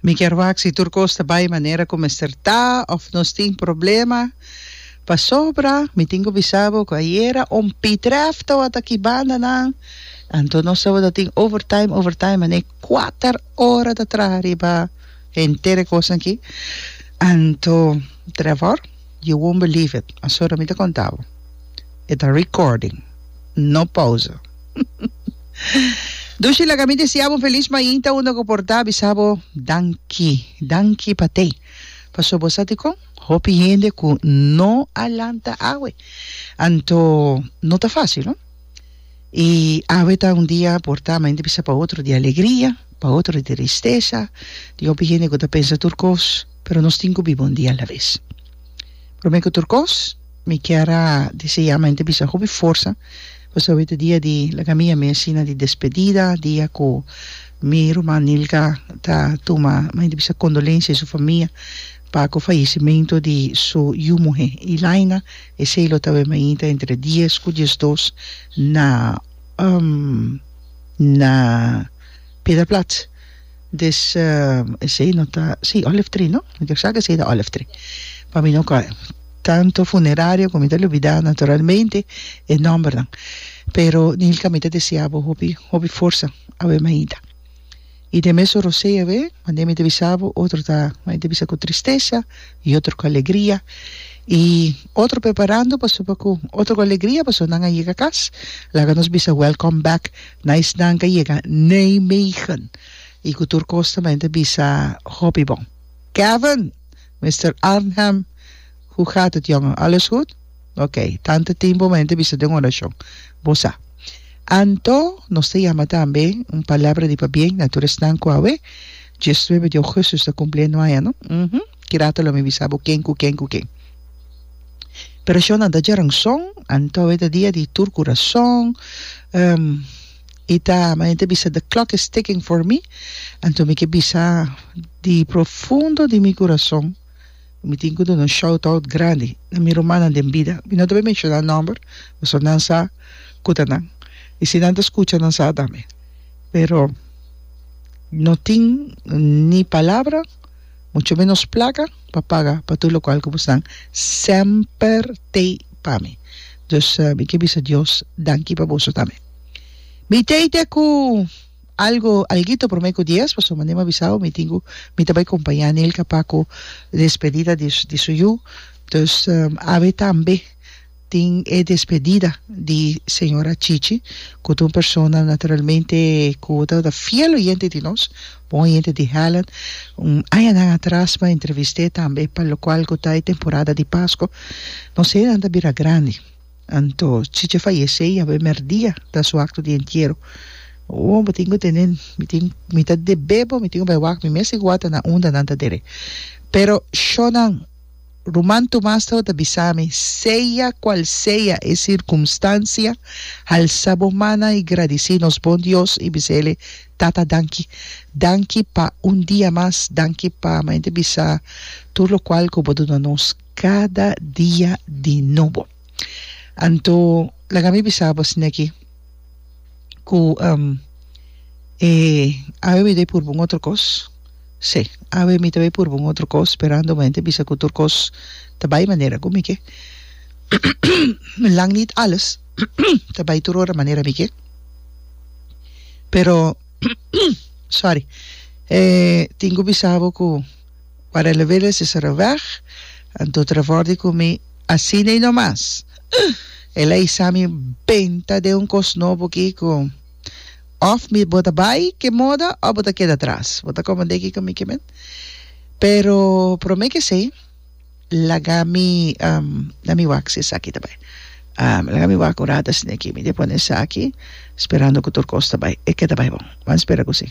Mi kier wak si tur kos ta bai manera ku mester ta òf nos tin problema. Pasobra mi tin ku bisa bo ku ayera un pitrèf tabata aki bandanan, anto nos tabata tin overtime, overtime manera kuater ora ta traha riba henter e kosnan aki. Anto, Trevor, you won't believe it, pasobra mi ta konta bo e ta recording, no pause. Dushi laga mi desea bo feliz mainta unda ku por ta bisa bo danki, danki pa tei. Paso bo sa dikon hopi hende ku no a lanta awe. Anto no ta fasil no. I awe ta un dia por ta mainta bisa pa otro di alegria, pa otro di tristesa. Tin hopi hende ku ta pensa tur kos, pero nos tin ku biba un dia alaves. Prome ku tur kos mi kier a desea mainta bisa hopi forsa. Bo sa wete dia di laga mi a mi asina di despedida, dia ku mi ruman Nilka ta tuma maña di bisa kondolensia di su famia pa ku fayesimentu di su yu muhé Ilaina. Esei lo tabé mainta entre dies ku diesdos na na Piedra Plaats. Des esey no ta si olive tree no mi ta sa cu esey ta olive tree pa mi no cua tanto funeraria cu mi ta lubida naturalmente e nombernan pero Nilka mi ta desea bo hopi hopi forsa awe maida y den mesun rosey awe mande mi ta bisa bo otro ta mi ta bisa cu tristesa y otro cu alegria, y otro preparando pasobra cu otro cu alegria pasobra nan a yega cas, laga nos bisa welcome back nice nan cu a yega Nijmegen y cu tur cos tambe ta bisa hopi bon. Kevin! Mister Arnhem, hoe gaat het jongen? Alles goed? Ok, tantu timpu bo henter bisa den un orashon. Bo sa. Anto, nos ta yama tambe un palabra di pabien na tur esnan ku awe, diesnuebe di ogusus, ta kumpli e nuaña, no? Uhum. Ki rato lo mi bisa bo ken ku ken ku ken. Pero shonnan ta djaranson, anto awe ta dia di tur kurason, em, i ta, mi henter bisa, the clock is ticking for me, anto mi ke bisa di profundo di mi kurason, Mi tin cu duna un shout out grandi na mi rumannan den bida. Mi no ta bay menciona nomber pasobra nan sa cu ta nan. Y si nan ta scucha nan sa tambe. Pero no tin ni palabra mucho menos placa pa paga pa tur locual cu bo esnan semper tey pa mi. Dus mi ke bisa Dios danki pa boso tambe. Mi tey te cu. Algo alguito prome ku dies paso mane mi a bisao mi tin ku mi ta bai kompañá Nilka pa ku despedida di di su yu entos awe tambe tin e despedida di señora Chichi ku ta un persona naturalmente ku tabata fiel oyente di nos bon oyente di Helen un añanan atras mi a entrevist'é tambe pa lokual ku ta e temporada di Pasko nos enan ta bira grandi. Anto Chiche fayesé ya primer dia ta su acto di entiero. Ohh bo tin cu tene mi tin mi ta debé bo mi tin cu bay wak mi mes tin cu wak ta na unda nan ta dere pero shonan Ruman Tomas tabata bisa mi sea cual sea e circunstancia alsa bo mannan y gradici nos bon Dios y bisa ele Tata danki danki pa un dia mas danki pa mente bisa tur lo cual cu bo duna nos. Cada dia di nobo. Anto laga mi bisa bosin aki cu e awe mi ta bay purba un otro cos, si awe mi ta bay purba un otro cos sperando bo henter bisa cu tur cos ta bay manera cu mi ke lang niet alles ta bay tur ora manera mi ke pero sorry tin cu bisa bo cu. Para el a wili si sera weg, anto trabor di cu mi asina y no mas. Ugh! El a isa mi benta den un cos nobo aki cu of mi bo ta bay ke moda of bo ta keda atras. Bo ta comprende kico mi ke men? Pero prome ke esey, laga mi na mi wak si esaki ta bay. Mi laga mi wak un rato asina aki. Mi di'a pone esaki, sperando cu tur cos ta bay. E ke ta bay bon. Bo a spera cu si.